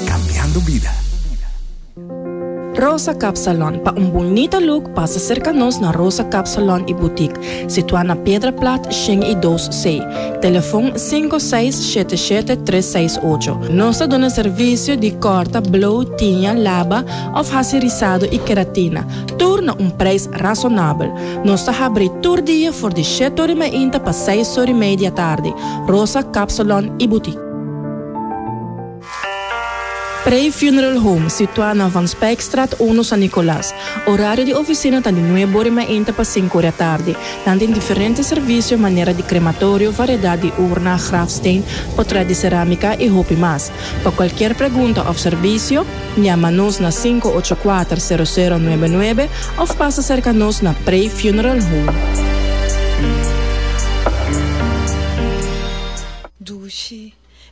Cambiando bida. Rosa Cap Salon, pa un bunita look pasa cerca nos na Rosa Cap Salon y Boutique, situa na Piedra Plat shen y dos C, telefon cinco seis shete shete tres seis ocho. Nos ta duna servicio di corta, blow, tiña, laba of haci rizado y keratina, tur na un prijs razonabel. Nos ta habri tur dia for di shete ori mainta pa seis ori mei di atardi. Rosa Cap Salon y Boutique. Prey Funeral Home, situá na Van Spijkstraat uno San Nicolas. Orario di oficina ta di nuebe ora i mainta pa sinku ora tardi. Nan tin diferente servicio manera di crematorio, variedad di urna, grafsteen, portret di cerámica i hopi mas. Pa cualkier pregunta of servicio, Llama nos na sinku ocho kuater sero sero nuebe nuebe of pasa cerca nos na Prey Funeral Home.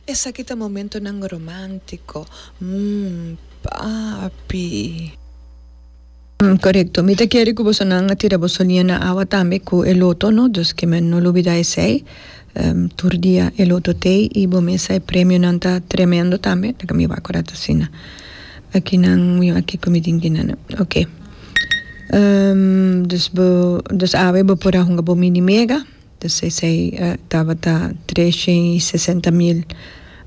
Esaki ta momentonan romántico, mm, papi. Corecto. Mi ta kere cu bosonan a tira boso liña na awa tambe cu e loto, no? Dus que men no lo bida esey. Tur dia e loto t'ey y bo mesa e premionan ta tremendo tambe, ta mi wak ora ta asina. Akinan win aki cu mi tin que nana. Ok. Dus bo, dus awe bo por a hunga bo mini mega. Entonces ey tabata tresha y sesenta mil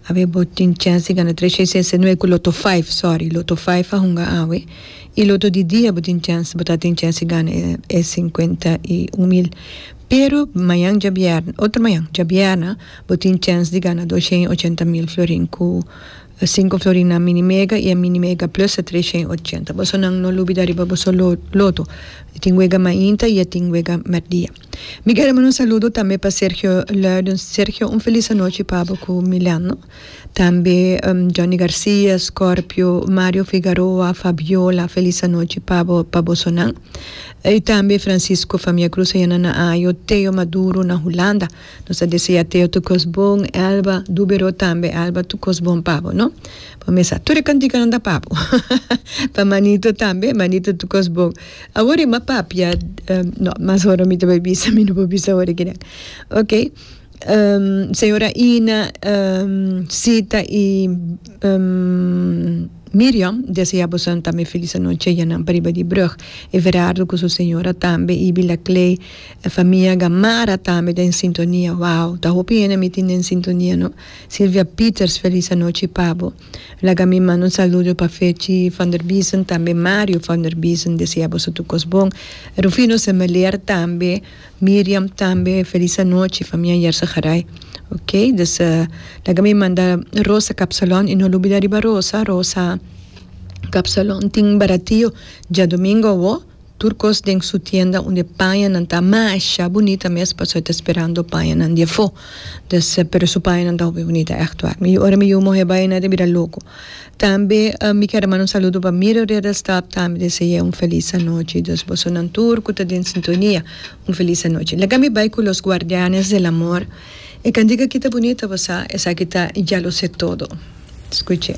awe bo tin chens di gana tresha y sesenta no ey cu loto five sorry loto five a hunga awe y loto di dia bo tin chens bo ta tin chens di gana e cincuenta y un mil pero mañan diabierna otro mañan diabierna bo tin chens di gana doshen y ochenta mil florin cu cinco florin na mini mega y e mini mega plus ta tresha y ochenta boso nan no lubida riba boso loto tin wega mainta y tin wega merdia. Mi kere manda un saludo tambe pa Sergio Luiden. Sergio un felis anochi pa bo ku Milano. Tambe Johnny Garcia, Scorpio, Mario Figaroa, Fabiola felis anochi pa bo pa boso nan. I tambe Francisco famia Cruz ayana na Ajo, Theo Maduro na Hulanda. Nos ta desea Theo tur kos bon, Elba Dubero tambe Elba tur kos bon pa bo no. Bo mesa tur e kantikanan ta pa bo. Pa Manito tambe, Manito tur kos bon. Awor e mapapia, no, mas hora mi ta bai bisa, mi no por bisa awor aki den. Ok, señora Ina, Sita y Miriam desea abusanan tambe e felis anochi ayanan pariba di brug. Everardo cu su señora tambe y Bila Clay, e famia Gamarra tambe ta en sintonia. Wow, ta hopi hende mi tin den sintonia, no. Silvia Peters felis anochi pa bo. Laga mi manda un saludo pa Fechi van der Biesen tambe Mario van der Biesen desea boso tur kos bon Rufino Semeler tambe Miriam tambe felis anochi famia Yersa Garay ok dus laga mi manda Rosa Kapsalon y no lo bida riba Rosa Rosa Kapsalon tin baratio diadomingo awo Tur kos den su tienda un de pañanan ta masha bunita mes paso e ta sperando pañanan di afo des pero su pañanan ta hopi bunita echt war mi ora mi yu mohe bai na ta bira loco tambe mi kier a manda un saludo pa mira reda staf tambe deseae un feliz anochi dus bosonan tur cu ta den sintonia un feliz anochi laga mi bai cu los guardianes del amor. E candica kita bunita bo sa esaki ta ya lo se todo. Scuche.